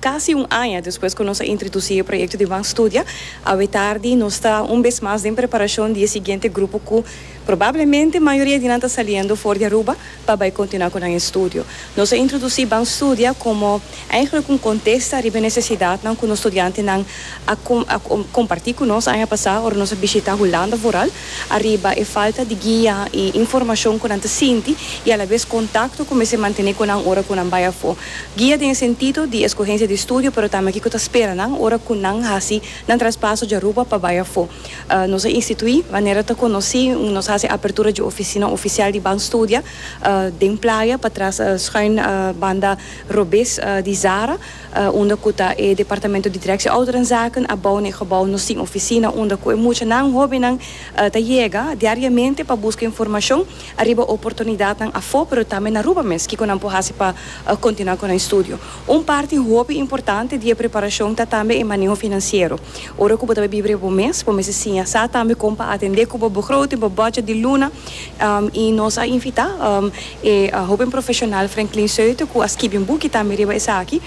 Casi un aña despues cu nos a introduci e proyecto di Ban Studia, awetardi nos ta un bes mas den preparacion di e siguiente grupo cu probablemente mayoria di nan ta saliendo for di Aruba pa bay continua cu nan estudio. Nos a introduci Ban Studia como eigenlijk un contesta riba e necesidadnan cu nos studiantenan a comparti cu nos aña pasa ora nos a bishita Hulanda vooral ariba e falta di guia y informacion cu nan ta sinti y alabes contacto cu mester mantene cu nan ora cu nan bay afo. Guia den e sentido di escogencia di studio pero tambe kico ta spera nan ora cu nan haci nan traspaso dja Aruba pa bai afo. Nos a institui manera ta conoci un nos haci apertura dje oficina oficial di Ban Studia den Playa patras schuin banda robes di Zara unda cu ta e departamento di directie ouderenzaken a bou na e gebou nos tin oficina unda cu e muchanan hobennan ta yega diariamente pa busca informacion Ariba oportunidatnan afó pero tambe na Aruba mes, kiko nan por hasi pa kontinuá ku nan estudio? Un parti hopi importante di e preparashon ta tambe e maneho finansiero. Ora ku bo ta bai biba riba bo mes, bo mester siña sa tambe kon pa atendé ku bo begroting, bo budget di luna. I nos a invitá e hoben profeshonal Franklin Seute ku a skibi un buki tambe riba esaki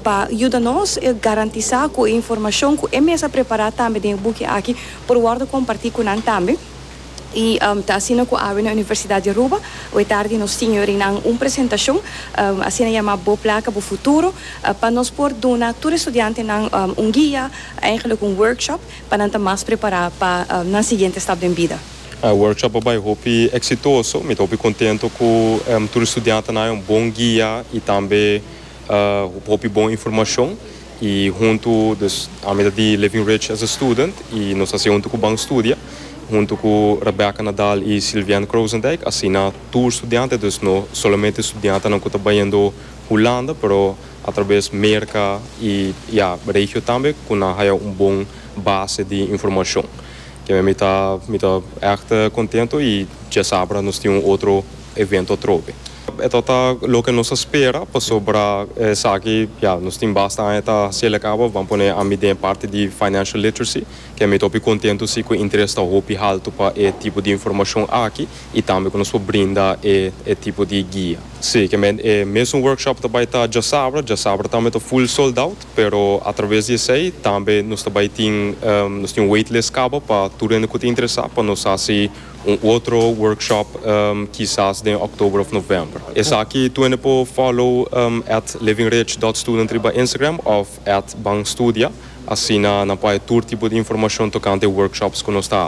pa yuda nos garantisá ku e informashon ku e mes a prepará tambe den e buki aki por wòrdu kompartí ku nan tambe. Y ta asina cu awe na Universidad di Aruba, awe tardi nos tin yorinan un presentacion, asina yama Bo Placa, Bo Futuro, pa nos por duna tur estudiantenan un guia, eigenlijk un workshop, pa nan ta mas prepara pa nan siguiente stap den bida. E workshop a bay hopi exitoso, mi ta hopi contento cu tur estudiantenan a haña un bon guia y tambe hopi bon informacion. Y hunto dus ami ta di Living Ridge as a student y nos ta haci hunto cu Ban Studia hunto cu Rebecca Nadal y Sylviane Croosendijk asina tur studiante dus no solamente studiantenan cu ta bayendo Hulanda pero atraves Merca y ya regio tambe cu nan haya un bon base di informacion kimen mi ta mi ta echt contento y djasabra nos tin un otro evento atrobe. E ta ta loke nos a spera pasobra esaki ya nos tin basta aña ta hasiel a cabo ban pone ami den e parti di financial literacy ke ami ta hopi contento si cu e interes ta hopi halto pa e tipo di informacion aki y tambe cu nos por brinda e e tipo di guia. Si, ke men e mesun workshop ta bay ta djasabra, djasabra tambe ta full sold out pero a traves di esey tambe nos ta bay tin nos tin wait list cabo pa tur hende cu ta interesa pa nos hasi Un otro workshop kisas den oktober of november. Esaki twenty po follow at livingrich dot student riba Instagram of at banstudia asina nan pa haja tur tipo di informashon tokante e workshops ku nos ta